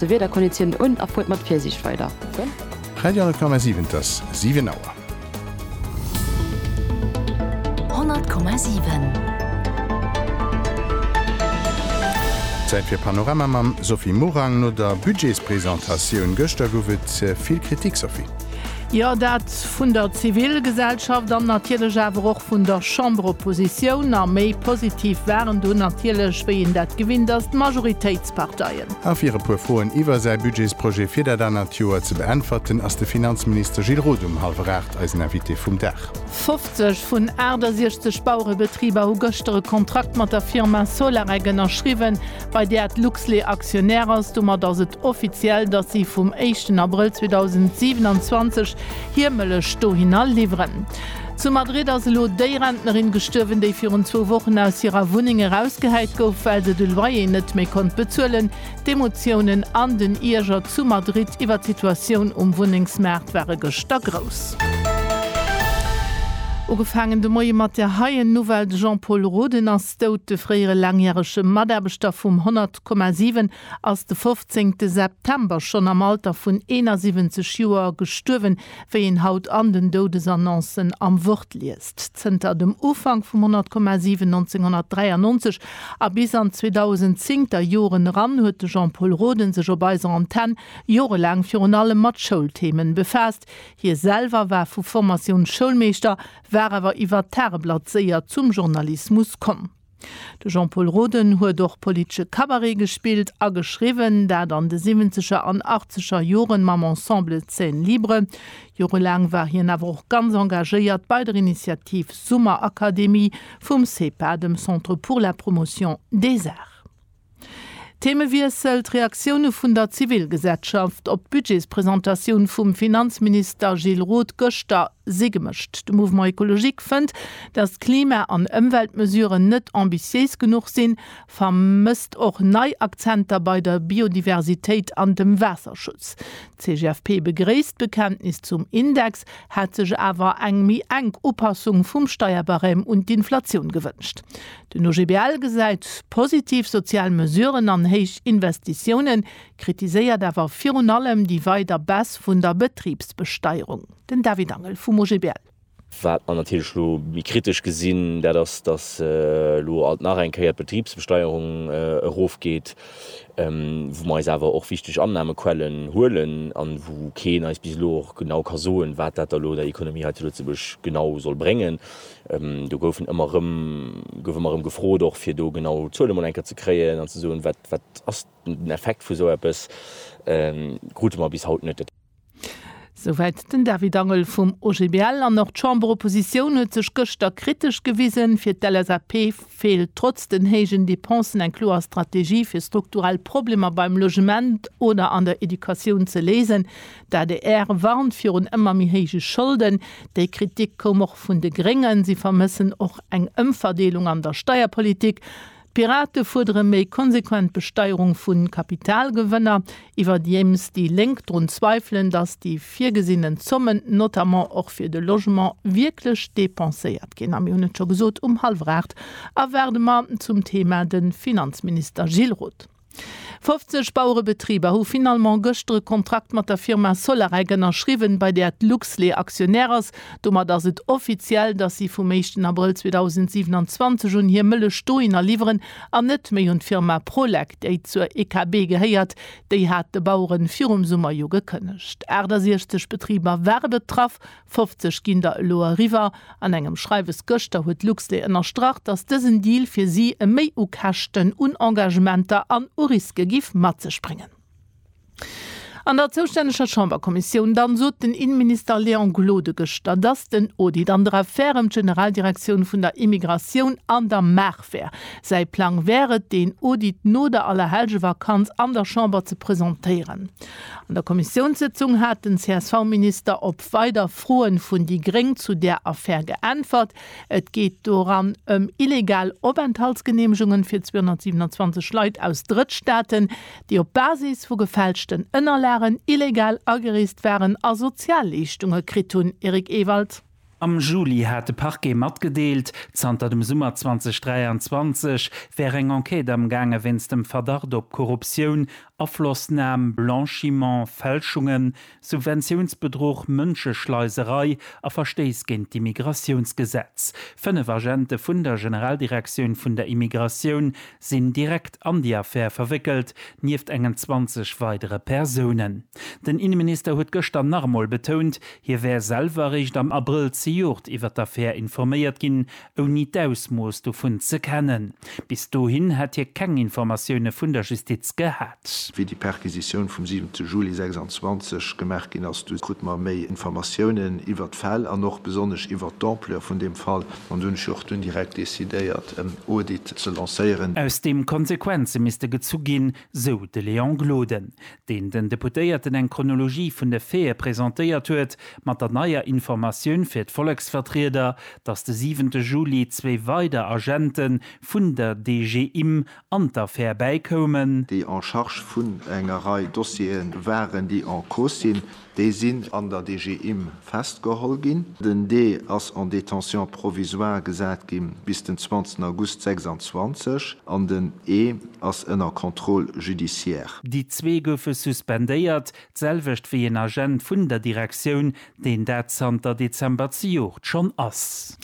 De Wieder konditiount un a fuert mat Virsiicht weider. Radio Honnert Komma siwen Et ass 7 Auer. Honnert Komma siwen. Zäit fir Panorama mam Sophie Morang. No der Budgetspresentatioun gëschter gouf et vill Kritik, Sophie. Jo, dat vun der Zivilgesellschaft an natierlech awer och vun der Chamberoppositioun. A méi positiv waren dunn natierlech, wéi een dat gewinnt ass, d'Majoritéitsparteien. Regierungsparteien. A fir e puer Froen iwwer säi Budgetsprojet fir dat anert Joer ze beäntwerten, ass de Finanzminister Gilles Roth um hallwer 8 eisen Invité vum Dag. 50 vun 68 Bauerebetriber hu gëschter e Kontrakt mat der Firma Solarec ënnerschriwwen, bei där d'Luxlait Aktionär ass. Domat ass et offiziell, datt si vum éischten Abrëll 2027 hir Mëllech dohinner liwweren. Zu Madrid ass elo déi Rentnerin gestuerwen, déi virun zwou Wochen aus hirer Wunneng erausgehäit gouf, well se de Loyer net méi konnt bezuelen. D'Emotiounen an den Ierger zu Madrid iwwer d'Situatioun um Wunnengsmaart ware gëschter grouss. Ugefaangen de Moie mat der heien Nouvelle, De Jean-Paul Roden ass dout. De fréiere laangjärege Mataarbechter vum 100,7 ass de 15 September schonn am Alter vun 71 Joer gestuerwen. Wéi een haut an den Doudesannoncen am Wort liest, Zënter dem Ufank vum Monat Komma 7 1993 a bis an d'Zweedausend-zéng ter Joren eran huet de Jean-Pol Roden sech op eiser Antenne jorelaang virun allem mat Schoulthemen befaasst. Hie selwer war vu Formatioun Schoulmeeschter, war awer iwwert d'Tageblatt séier zum Journalismus komm. De Jean-Pol Roden huet och politesche Cabaret gespillt a geschriwwen, dat an de siwwenzeger an achtzeger Joren mam Ensemble Scène Libre. Jorelaang war hien awer och ganz engagéiert bei der Initiativ Summerakademie vum CEPA, dem Centre pour la Promotion des Arts. Themewiessel, D'Reaktioune vun der Zivilgesetschaft op d'Budgetspresentatioun vum Finanzminister Gilles Roth gëschter si gemëscht. De Mouvement Ecologique fënnt, datt d'Klima an Ëmweltmesuren net ambitiéis genuch sinn, vermësst och nei Akzenter bei der Biodiversitéit an dem Waasserschutz. D'CGFP begréisst d'Bekenntnis zum Index, hätt sech awer eng méi enk Upassung vum Steierbarème un d'Inflatioun gewënscht. Den OGBL gesäit positiv sozial Mesuren an héich Investitiounen, kritiséiert awer virun allem déi weider Baisse vun der Betribsbesteierung. Den David Angel vum OGBL. Wat mer natierlech elo méi kritesch gesinn, dat ass, datt elo alt nach eng Kéier d'Betribsbesteierung erofgeet, wou mer eis awer och wichteg Annahmequellen huelen a wou keen eis bis elo och genau ka soen, wat dat da elo der Ekonomie hei zu Lëtzebuerg genau soll bréngen. Do gouf ëmmer erëm gefrot, och fir do genau Zuele mol eng Kéier ze kréien an ze soen, wat ass den Effekt vu sou eppes, krute mer bis haut net. Souwäit den David Angel vum OGBL. An och d'Chamberoppositioun huet sech gëschter kritesch gewisen. Fir d'LSAP feelt trotz den héijen Depensen eng kloer Strategie, fir strukturell Problemer beim Logement oder an der Educatioun ze léisen. D'adr warnt virun ëmmer méi héije Scholden. Déi Kritik koum och vun de Gréngen. Si vermëssen och eng Ëmverdeelung an der Steierpolitik. D'Pirate fuerdere méi konsequent Besteierung vu Kapitalgewënner. Iwwerdiems déi Lénk drun zweifelen, datt déi virgesinnen Zommen, notamment och fir de Logement, wierklech depenséiert ginn. A mir hunn et scho gesot um hallwer 8, erwaarde mer zum Thema de Finanzminister Gilles Roth. 50 Bauerebetriber hu finalement gëschter e Kontrakt mat der Firma Solarec ënnerschriwwen, bei där d'Luxlait Aktionär ass. Domat ass et offiziell, dass si vum éischten Abrëll 2027 un hir Mëllech dohinner liwweren an net méi un d'Firma Prolec, déi zur EKB gehéiert. Déi hat de Baueren virum Summer jo gekënnegt. 68 Betriber ware betraff. 50 ginn der elo eriwwer. An engem Schreiwes gëschter huet Luxlait ënnerstrach, datt dësen Deal fir si e Méi u Käschten, un Engagementer an u Riske géif mat sech bréngen. An der zoustänneger Chamberkommissioun dann sot den Innenminister Léon Gloden gëschter, datt den Audit an der Affär ëm d'Generaldirektioun vun der Immigratioun an der Maach wär. Säi Plang wär et, deen Audit no der Allerhellgevakanz an der Chamber ze presentéieren. An der Kommissiounssëtzung hat den CSV-Minister op weider Froen vun déi Gréng zu där Affär geäntwert. Et geet doran ëm illegal Openthaltsgeneemegungen fir 227 Leit aus Drëttstaaten, déi op Basis vu gefälschten Ënnerlagen illegal agereest waren a Sozialleeschtunge kritt hunn. Eric Ewald. Am Juli hat de Parquet matgedeelt, zanter dem Summer 2023 wär eng Enquête amgaange wéinst dem Verdacht op Korruptioun, Aflossnam, Blanchiment, Fälschungen, Subventiounsbedruch, Mënscheschleiserei a Verstéiss géint d'Immigratiounsgesetz. Fënnef Agente vun der Generaldirektioun vun der Immigratioun sinn direkt an déi Affär verwéckelt, nieft engen 20 weidere Persounen. Den Inneminister huet gëschter nach emol betount, hie wär selwer eréischt am Abrëll zejoert iwwer d'Affär informéiert ginn, ouni d'Ausmooss dovun ze kennen. Bis dohin hätt hie keng Informatioune vun der Justiz gehat. S, Wéi déi Perquisitioun vum 7 te Juli 26 gemaach ginn ass, du krut mer méi Informatiounen iwwert d'Fäll an och besonnesch iwwert d'Ampleur vun deem Fall. An do hunn ech och dunn direkt decidéiert en Audit ze lancéieren. Aus deem Konsequenze misste gezu ginn, sou de Léon Gloden, deen den Deputéierten eng Chronologie vun de Faite presentéiert huet, mat der neier Informatioun fir d'Volleksvertrieder, datt de 7 te Juli zwee weider Agente vun der DGIM an d'Affär bäikoumen. déi en charge vun enger Rei Dossiere waren, déi en cause sinn, déi sinn an der DG Imm festgeholl ginn. Den D ass en détention provisoire gesat gi bis den 20 August 26 an den E ass ënner Contrôle judiciaire. Déi zwee goufe suspendéiert, d'selwecht wéi een Agent vun der Direktioun, deen dat zanter Dezember zejoert schonn ass.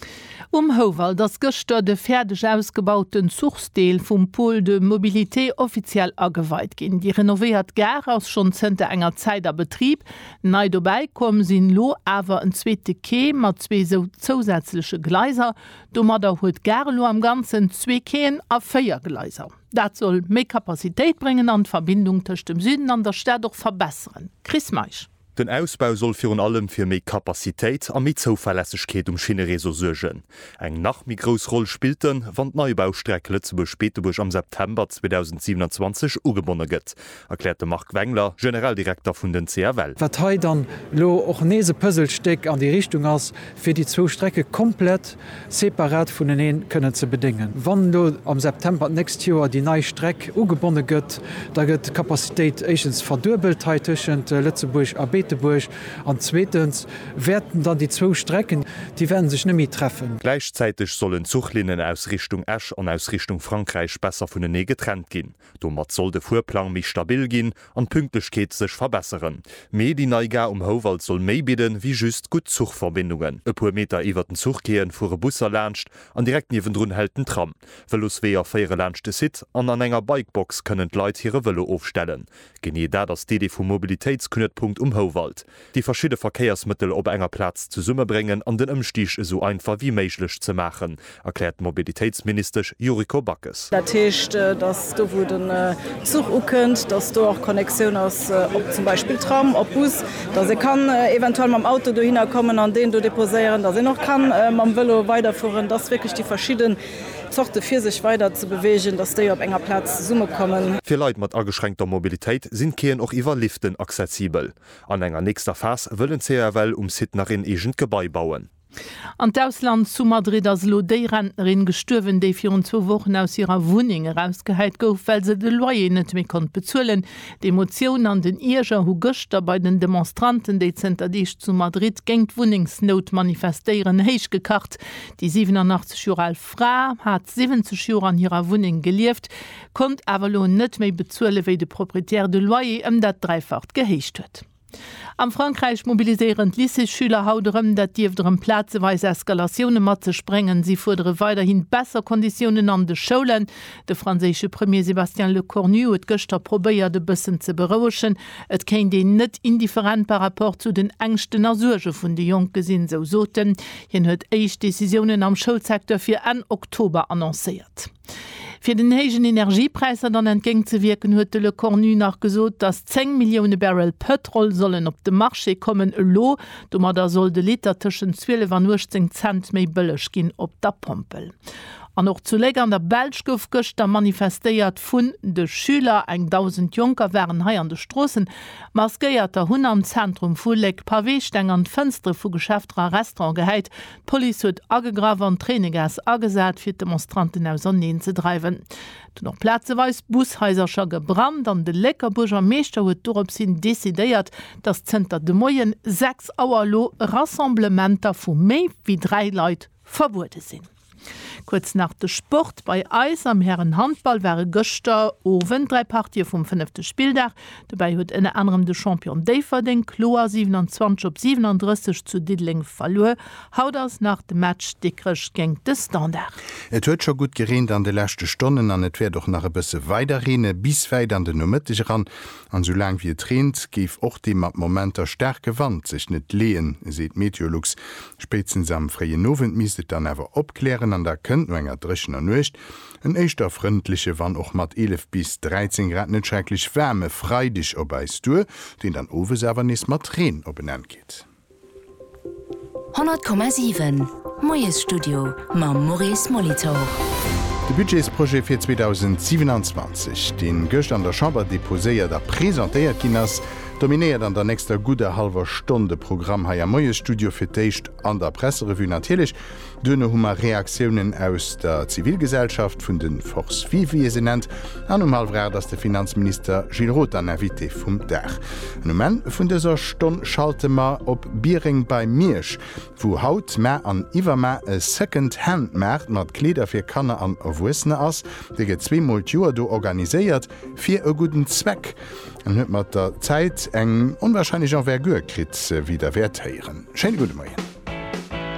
Um Houwald ass gëschter de fäerdeg ausgebauten Zuchsdeel vum Pôle de mobilité offiziell ageweit ginn. Déi renovéiert Gare ass schonn zënter enger Zäit a Betrib. Nei dobäi komm sinn elo awer en zweete Quai mat zwee zousätzleche Gleiser. Domadder huet d'Gare elo am Ganzen zwee Quaien a véier Gleiser. Dat soll méi Capacitéit bréngen an d'Verbindung tëscht dem Süden an der Stad och verbesseren. Chris Meisch. Den Ausbau soll virun allem fir méi Kapazitéit a méi Zouverlässegkeet um Schinnereseau suergen. Eng nach méi grouss Roll spillt en, wann d'Neibaustreck Lëtzebuerg-Beetebuerg am September 2027 ugebonne gëtt, erkläert de Marc Wengler, Generaldirekter vun den CFL. Wat hei dann elo och nees e Puzzlestéck an déi Richtung ass, fir déi zwou Strecke komplett separat vuneneen kënnen ze bedéngen. Wann elo am September d'nächst Joer déi nei Streck ugebonne gëtt, da gëtt d'Capacitéit éischtens verduebelt hei tëschent Lëtzebuerg a Beetebuerg an zweetens wäerten dann déi zwou Strecken, déi wäerte sech net méi treffen. Gläichzäiteg sollen d'Zuchlinnen aus Richtung Esch an aus Richtung Frankräich besser vunenee getrennt ginn. Domat soll de Fuerplang méi stabil ginn an d'Pünktlechkeet sech verbesseren. Mee déi nei Gare um Houwald soll méi bidden, wéi just gutt Zuchverbindungen. E puer Meter iwwert den Zuchquaien fuere Busser laanscht an direkt niewendrun hält den Tram. Vëlosweeër féiere laanscht de Site an an enger Bikebox kënnen d'Leit hire Vëlo ofstellen. Genee dat ass d'Idee vum Mobilitéitsknuetpunkt um Houwald. déi verschidde Verkéiersmëttel op enger Plaz zesummebréngen an den Ëmstig esou einfach wéi méiglech ze maachen, erkläert d'Mobilitéitsministesch Yuriko Backes. Dat heescht, datt do wou den Zuch ukënnt, datt do och Connexioun ass op zum Beispill Tram, op Bus, datt ee kann eventuell mam Auto dohinner kommen an deen do deposéieren, datt een och ka mam Vélo weiderfueren, datt wierklech déi verschidde Zorte fir sech weider ze beweegen, datt déi op enger Plaz zesummekommen. Fir Leit mat ageschränkter Mobilitéit sinn d'Quaien och iwwer Liften accessibel. An enger nächster Phas wëllen CAFL um Site nach een eegent Gebai bauen. An d'Ausland, Zu Madrid ass elo déi Rentnerin gestuerwen, déi virun zwou Wochen aus hirer Wunneng erausgehäit gouf, well se de Loyer net méi konnt bezuelen. D'Emotioun an den Ierger hu gëschter bei den Demonstranten, déi zënter Deeg zu Madrid géint d'Wunnengsnout manifestéieren, héich gekacht. Déi 87 Joer al Fra hat 70 Joer an hirer Wunneng gelieft. konnt awer elo net méi bezuele wéi de Propriétaire de Loyer ëm dat Dräifacht gehéicht huet. Am Frankräich mobiliséieren d'Lycéesschüler haut erëm. Dat dierft erëm plazeweis Eskalatioune mat sech bréngen. Si fuerdere weiderhi besser Konditiounen an de Schoulen. De franséische Premier Sébastien Lecornu huet gëschter probéiert e bëssen ze berouegen. Et kéint een net indifferent par rapport zu den Ängschten a Suerge vun de Jonke sinn, sou sot en. Hien huet éischt Decisiounen am Schoulsecteur fir Enn Oktober annoncéiert. Fir den héijen Energiepräisser dann entgéint ze wierken, huet de Lecornu nach gesot, datt 10 Millioune Barrel Pëtrol sollen op de Marché kommen elo. Domadder soll de Liter tëschent 12 an 18 Cent méi bëlleg ginn op der Pompel. An och zu Léck an der Belsch gouf gëschter manifestéiert vun de Schüler. Eng 1.000 Jonker waren hei an de Stroossen maskéiert a hunn am Zentrum vu Léck Paweesteng an d'Fënstere vu Geschäfter a Restaurante gehäit, D'Police huet agegraff an Tréinegas agesat, fir d'Demonstranten auserneen ze dreiwen. Et hunn och plazeweis Bushaisercher gebrannt an de Lécker Buergermeeschter huet dorops hin decidéiert, datt zënter de Moien 6 Auer elo Rassemblementer vu méi wéi 3 Leit verbuede sinn. Kuerz nach de Sport, Bei eis am Hären-Handball ware gëschter Owend 3 Partië vum fënnefte Spilldag. Dobäi huet ënner anerem de Champion Déifferdeng kloer 27 op 37 zu Diddeleng verluer. Haut ass nach de Match Dikrech géint de Standard. Et huet scho gutt gereent an de leschte Stonnen an et wäert och nach e bësse weider reene bis wäit an den Nomëtteg eran. An sou laang wéi et reent, géif och dee mat Momenter staarke Wand sech net leeën, seet Meteolux. Spéitstens am fréien Owend misst et dann awer opklären an da kënnt no enger dréchener Nuecht En éischter frëndleche, wann och mat 11 bis 13 Grad net schrecklech waarme Freideg op eis duer, deen dann owes awer nees mat Reen op en Enn geet. 100,7 Moiesstudio mam Maurice Molitor. De Budgetsprojet fir 2027, deen gëscht an der Chamber deposéiert a presentéiert ginn ass, dominéiert an der nächster gudder hallwer Stonn de Programm hei am Moiesstudio, fir d'éischt an der Presserevue natierlech, Duerno hu mer Reaktiounen aus der Zivilgesellschaft, vun de Forces vives wéi ee se nennt, an um hallwer 8 ass de Finanzminister Gilles Roth dann Invité vum Dag. An um Enn vun dëser Stonn schalte mer op Biereng bei Miersch, wou haut, mar an iwwerma e Second Hand Maart mat Kleeder fir Kanner an Erwuessener ass. Dee gëtt zwee mol d'Joer do organiséiert, fir e gudden Zweck, an huet mat der Zäit eng onwahrscheinlech Envergure kritt, wéi der wäert héieren. Schéine gudde Moien.